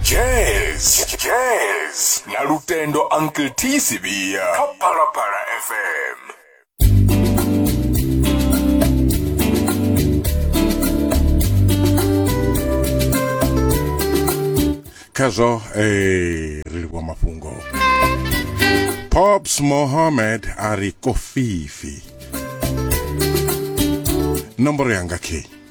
jazz jazz na lutendo uncle t sivia kha phalaphala fm khazwo eh, ri livhuwa mafhungo pops mohammed a ri kofifi nomboro yanga key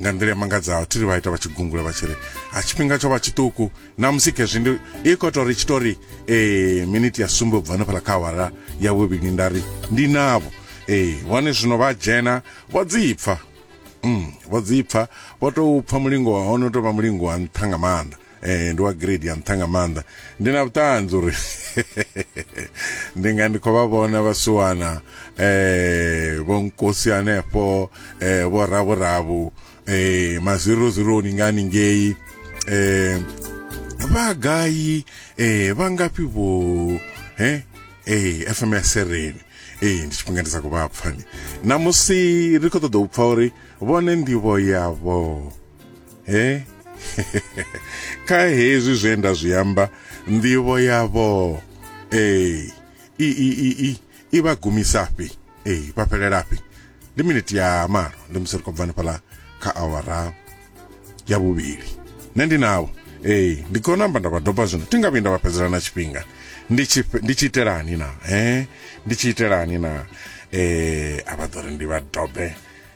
nga nḓila ya mangadzaho thi ri vha ita vha tshi gungula vha tshi ri a tshifhinga tsho vha tshiṱuku namusi khezwi ndi i khou tou ri tshi tou ri ee miniti ya sumbe u bva hanefhala kha awara ya vhuvhili nda ri ndi navho ee hone zwino vha dzhena vho dzipfa mm, vho dzipfa vho tou pfa mulingo wa hone u tou vha mulingo wa nṱha nga maanḓa eh, ndi wa grade ya nṱha nga maanḓa ndi na vhuṱanzi uri ndi nga ndi khou vha vhona vhasiwana eh, vho nkosi hanefho eh, vho ravhuravu eh, mazirozironi nga ningei eh, vha gai eh, vha ngafhi vho eh, eh, fm ya sereni eh, ndi tshifhinga ndi sa khou vha pfani namusi ri khou ṱoḓa u pfa uri vhone ndivho yavho he kha hezwi zwe nda zwi amba nḓivho yavho ee i i i i i vha gumisafhi ee vha fhelelafhi ndi miniti ya malo ndi musi ri khou bvani fhaḽa kha awara ya vhuvhili nṋe ndi navho ee ndi khou namba nda vha doba zwino thi nga vhuyi nda vha fhedzela na tshifhinga ndi tshi ndi tshi itelani na he ndi tshi itelani na eh a vha ḓo ri ndi vha dobe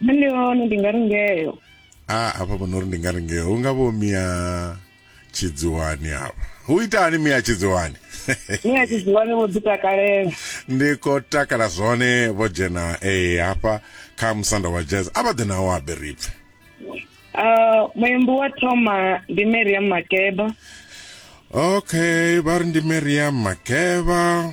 ndi hone ndi nga ri ngeyo a hafha vho no ri ndi nga ri ngeyo hu nga vho mia tshidziwani hafha hu itani mia tshidziwani ni a tshi dziwani vho ḓi takalela ndi khou takala zwone vho dzhena ee hafha kha musanda wa jazz a vha ḓe nawo habe ri pfe Ah, muimbi wa thoma ndi mariam makeba okay vha ri ndi mariam makeva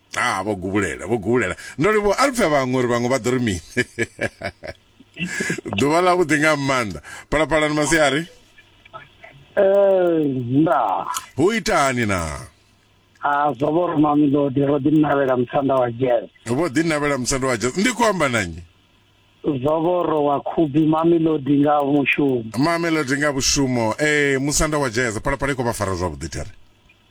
Haa, vho gubulela, vho gubulela. Ndo livhuwa, a ri pfe vhaṅwe uri vhaṅwe vha ḓo ri mini. Ḓuvha ḽa vhuḓi nga maanḓa. Phalaphalani masiari. Eh, nda. Hu itani na? A ah, zwo vho ruma milodi ro ḓi navhela musanda wa jazz. Vho ḓi navhela musanda wa jazz. Ndi khou amba na nnyi? zovoro wa khubi mamelodi nga mushumo mamelodi nga mushumo eh musanda wa jazz phalaphala i khou vha fara zwavhuḓi thare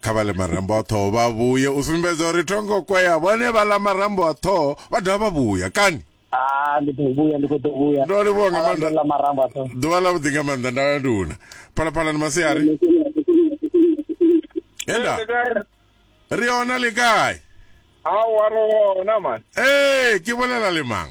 kha vha ḽe marambo a ṱhoho vha vhuye u sumbedza uri thongo kwea vhone vha ḽa marambo a ṱhoho vha dovha vha vhuya kani ah, ndi ḓo vhuya ndi khou ḓo vhuya ndo livhuwa nga maanḓa ḽa marambo a ṱhoho ḓuvha ḽa vhuḓi nga maanḓa nda ya nduna phalaphala ni masiari enda ri ona le kae aowa ro ona man ee ke bolela le mang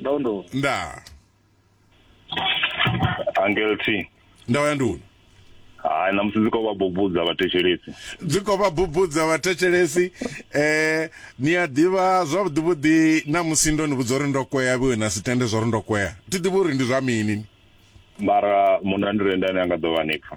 Ndo ndo. Nda. Angel T. Ndawo ya nduni. Hayi namusi ndzi ko va bubudza vathetshelesi. Ndzi ko va bubudza vathetshelesi eh ni ya ḓivha zwavhuḓi vhuḓi namusi ndo ni vhudza uri ndo kwea vhiwe na si tende zwa uri ndo kwea. Thi ḓivhi uri ndi zwa mini. Mara munna ndi renda ane a nga ḓo vha ni pfa.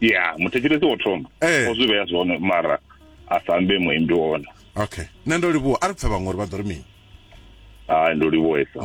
ya muthetshelesi wo thoma eh. o zwi vhea zwone mara a sa ambe muimbi wone okay nṋe ndo livhuwa a ri pfe vhaṅwe uri vha ḓo ri mini hai ndo livhuwesa